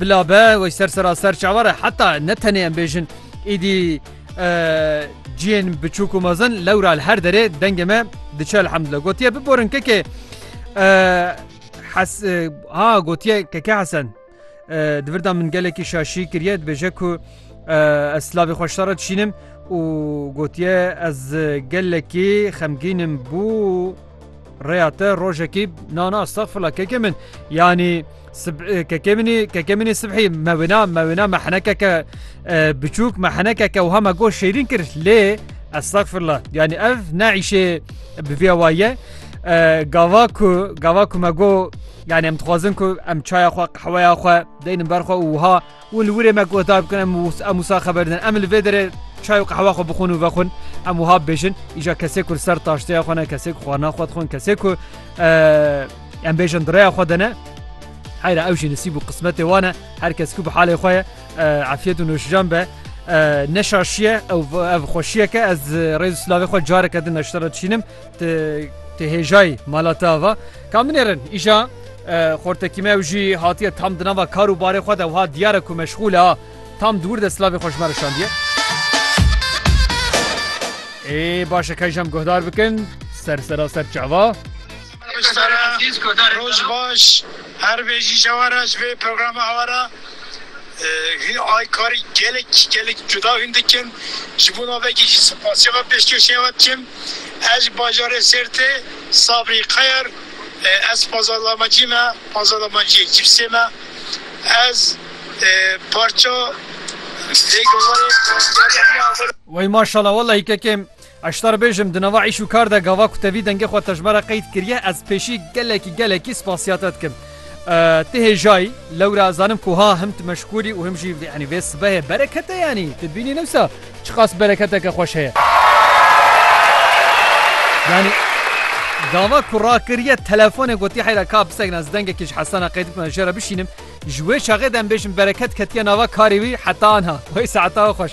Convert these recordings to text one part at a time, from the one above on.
Bila be wey ser seraser çawa re heta ne tenê em bêjin îdî ciyên biçûk û mezin lewra li her derê dengê me diçe elhemdile gotiye biborin kekê ha gotiye keke hesen di virda min gelekî şaşî kiriye dibêje ku ez slavê xweşta re dişînim û gotiye ez gelekî xemgînim bû Rêya te rojekî nana estexfirla kekê min yanî kekê minî kekê minî sibhî me wêna me wêna me henekeke biçûk me henekeke wiha me goş şêrîn kir lê estexfirla yanî ev ne îşê bi vê waye gava ku gava ku me go yani em dixwazin ku em çaya xwe qehweya xwe deynin ber xwe û wiha û li wurê me guhdar bikin em em wisa xeber din em li vê derê çay û qehwa xwe bixwin û vexwin em wiha bibêjin îja kesê ku li ser taşteya xwe ne kesê ku xwarina xwe dixwin kesê ku em bêjin direya xwe de ne heyra ew jî nisîb û qismetê wan e her kes ku bi halê xwe ye efiyet û noşijan be neşaşiye ev ev xweşiyeke ez rêz silavê xwe careke din neştera çînim Ti hêjayî mala te ava ka min êrin îşa xortekî me ew jî hatiye tam di nava kar û barê xwe de wiha diyare ku meşxûle a tam di wir de silavê xwe ji me re şandiye. Ê baş e kayjam guhdar bikin ser sera ser çava. Roj baş her bêjî jewara ji vê programa hewara ay karî gelek gelek cuda hûn dikin ji bo navekî jî sipasiyê ve pêşkêşê ve dikim. Ez ji bajarê Sêrtê Sabrî Qeyr ez pazarlamacî me pazarlamaciyê cîpsê me ez parça lê gavarê diyarî heme avara. Wey maşala walahi kekê Eştar bêjim di nava îş û kar de gava ku te vî dengê xwe tejmera qeyd kiriye ez pêşî gelekî gelekî spasîya te dikim. Ti hêjayî lewra zanim ku ha him tu meşkûrî û him jî yanî vê sibehê bereket e yanî tu bînî ne wisa çiqas bereketeke xweş heye. Yanî gava ku rakiriye telefonê gotiye heyra ka bisekna ez dengekî ji Hesana qey dikna jê re bişînim ji wê çaxê de em bêjin bereket ketiye nava karê wî heta anha wey saeta xweş.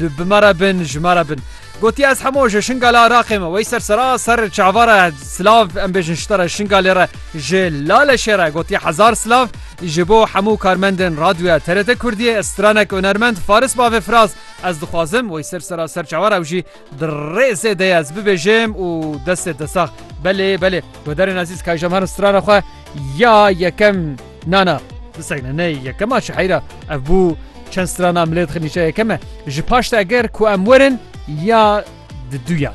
Li bi me re bin, ji me re bin. Gotiye ez hemo ji Şingalê Iraqê me. Wey ser sera ser çavara silav em bêjin ji te re Şingalê re ji Laleşê re gotiye hezar silav ji bo hemû karmendên radyoya TRT Kurdiyê stranek hunermend Faris Bavê Firaz ez dixwazim wey ser sera ser çavara ew jî di rêzê de ez bibêjim û destê te sax belê belê Guhdarên Ezîz kajam herin strana xwe ya yekem Na na bisegine ney yekema çi heyra ev bû çend strana milê dixin nîşe yekeme ji paşte ger ku em werin ya di duyan.